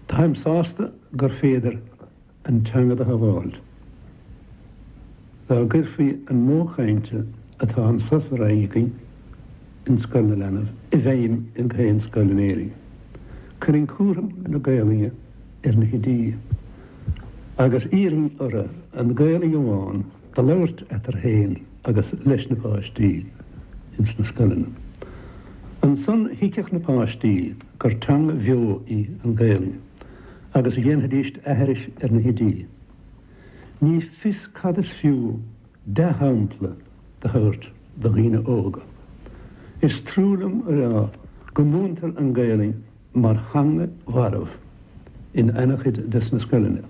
Táim sásta gur féidir an teanga do shabháilt. Dá gcuirfí an modh chainte atá anso sa Rinn againn in Scoil na Leanbh i bhfeidhm ins gach aon scoil in Éirinn, cuirfinn cúram na Gaolainne ar na hoidí, agus d'iarrfainn orthu an Ghaolainn amháin a labhairt eatarthu féin agus leis na páistí ins na scoileanna. Ansan thuigfeadh na páistí gur teanga bheo í an Gaelainn agus a dhéanfaidís aithris ar na hoidí. Ní fios cad is fiú dea-shampla do thabhairt do dhaoine óga. Is trua liom a rá go múintear an Gaelainn mar theanga mharbh in an-chuid des na scoileanna.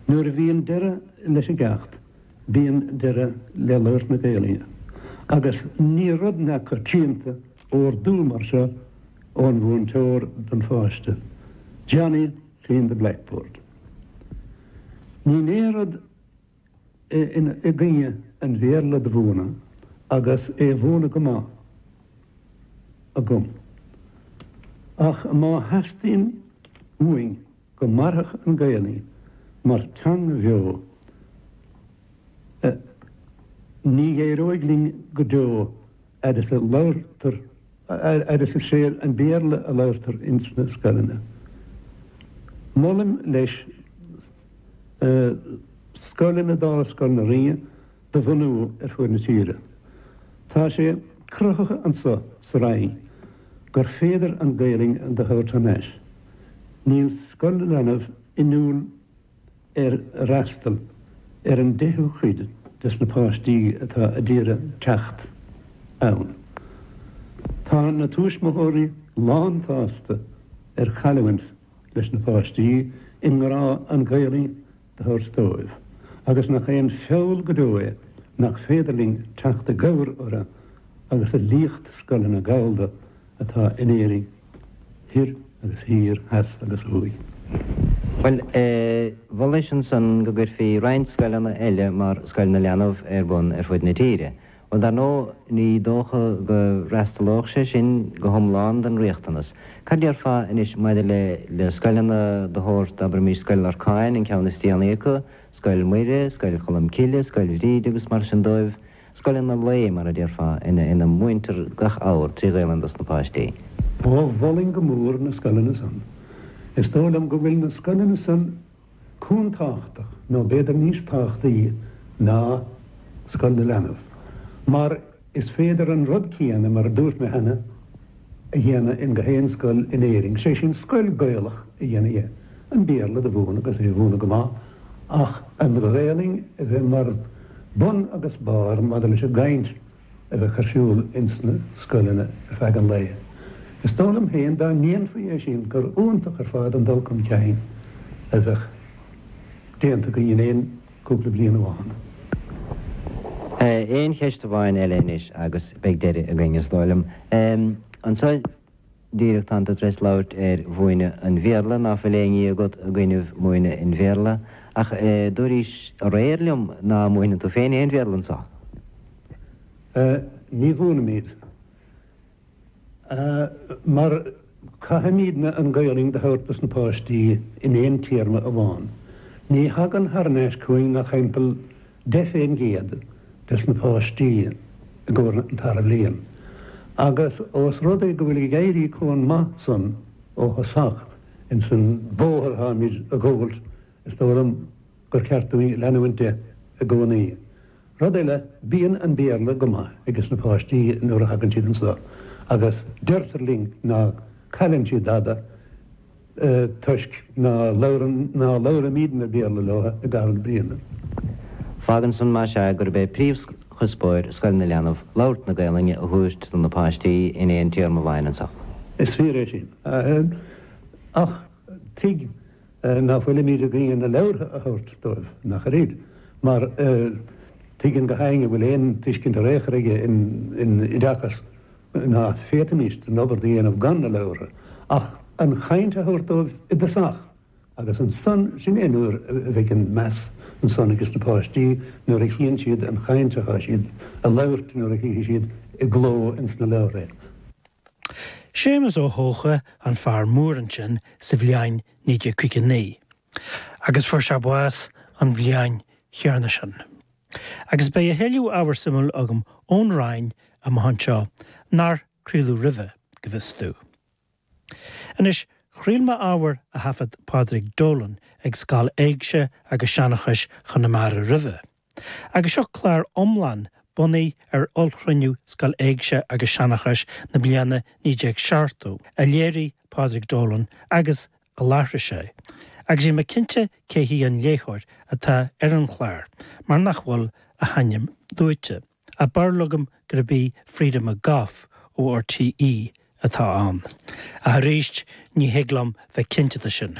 Nuair a bhíonn deireadh leis an gceacht bíonn deireadh le labhairt na Gaelainne agus ní rud neamhchoitianta órdú mar seo ón mhúinteoir don pháiste, Johnny clean the blackboard. Níl aon rud i gcoinne an Bhéarla do mhúineadh agus é a mhúineadh go maith agam, ach má theastaíonn uainn go mairfeadh an Ghaelainn mar teanga bheo, ní éireoidh linn go deo. fhad is a labhartar, fhad is is é an Béarla a labhartar ins na scoileanna. Molaim leis scoileanna dála Scoil na Rinne do bhunú ar fuaid na tíre. Tá sé cruthaithe annso sa Rinn gur féidir an Gaelainn do thabhairt thar n-ais. Níl Scoil na Leanbh inniúil. ar fhreastal ar an deichiú cuid des na páistí atá ad iarraidh teacht ann. Tá na tuismitheoirí lánsásta cailliúint leis na páistí i ngrá an Ghaelainn do thabhairt dóibh agus nach é an feall go deo é nach féidir linn teacht i gcabhair orthu agus a líocht scoileanna Gallda atá in Éirinn thoir agus thiar, theas agus thuaidh. Mholais ansan go gcuirfí roinnt scoileanna eile mar Scoil na Leanbh ar bun ar fud na tíre. Bhuel, dar ndóigh, ní dócha go bhfreastalódh sé sin go hiomlán don riachtanas. Cad déarfá anois maidir le scoileanna de shórt, abraimis, Scoil Lorcáin, an ceann is déanaí acu, Scoil Mhuire, Scoil Cholm Cille, Scoil Bhríde agus mar sin dóibh? Scoileanna lae, mar a déarfá, ina múintear gach abhar trí Ghaelainn dos na páistí. Ó, mholfainn go mór na scoileanna san. Is dóigh liom go bhfuil na scoileanna san chomh tábhachtach, nó b'fhéidir níos tábhachtaí ná Scoil na Leanbh, mar is féidir an rud céanna, mar a dúirt mé cheana, a dhéanamh in gach aon scoil in Éirinn, sé sin scoil Gaelach a dhéanamh dhe, an Béarla do mhúineadh agus é a mhúineadh go maith ach an Ghaelainn a bheith mar bun agus barr maidir leis an gcaint a bheadh ar siúl ins na scoileanna ar feadh an lae. Is dóigh liom féin dá ndéanfaí é sin gur iontach ar fad an dul chun cinn a bheadh déanta againn in aon cúpla bliain amháin. Aon cheist amháin eile anois agus beidh deireadh againn, is dóigh liom. Anso díreach tánn tú tar éis labhairt ar mhúineadh an Bhéarla, ná fuil aon ní agat i gcoinnibh múineadh an Bhéarla, ach dúraís aréir liom ná múineann tú féin aon Bhéarla anso? Ní mhúinimid. mar caithfimídne an Ghaelainn do thabhairt dos na páistí in aon téarma amháin. Ní thagann thar n-ais chugainn ach thimpeall deich fén gcéad des na páistí i gcomhair an tarna bhliain. Agus ós rud é go bhfuil ag éirí comh maith san ó thosach ins an bóthar atáimíd a ghabháilt, is dóigh liom, gur cheart dúinn leanúint de i gcónaí. Rud eile, bíonn an Béarla go maith ages na páistí nuair a thagann siad anso agus deirtear linn ná cailleann siad dada toisc ná labhrann, ná labhraímidne Béarla leo i gcaitheamh na bliana. Fágann san, más ea, gurb é príomhchuspóir Scoil na Leanbh labhairt na Gaelainne a thabhairt do na páistí in aon téarma amháin anso. Is fíor é sin. Ach tuig nach bhfuilimíd ag iarraidh na leabhartha a thabhairt dóibh, nach ar iad, mar tuigeann gach éinne a bhfuil aon tuiscint ar aon chor aige in oideachas ná féadfaimíst an obair do dhéanamh gan na leabhartha, ach an chaint a thabhairt dóibh i dtosach agus ansan, sin é an uair a bheidh an meas ansan ages na páistí nuair a chíonn siad an chaint atá siad a labhairt nuair a chífidh siad i gcló ins na leabhartha é. Séamus Ó hEocha an fear mór ansin sa bhliain 1959 agus fuair sé bás an bhliain chéanna sin. Agus beidh a thuilleadh ábhar suimiúil agam ón Rinn amach anseo, nár craoladh roimhe, go bhfios domh. Anois, chraol mé ábhar a thaifead Pádraig Dolan ag Scoil Éigse agus Seanchais Chonamara roimhe, Agus seo clár iomlán bunaithe ar ollchruinniú Scoil Éigse agus Seanchais na bliana 1970, a léirigh Pádraig Dolan agus a láithrigh sé, agus níl mé cinnte cé hí an léitheoir atá ar an chlár mar nach bhfuil a hainm luaite, ach barúil agam gurb í Freda McGough ó RTÉ atá ann, ach arís ní thig liom bheith cinnte de sin.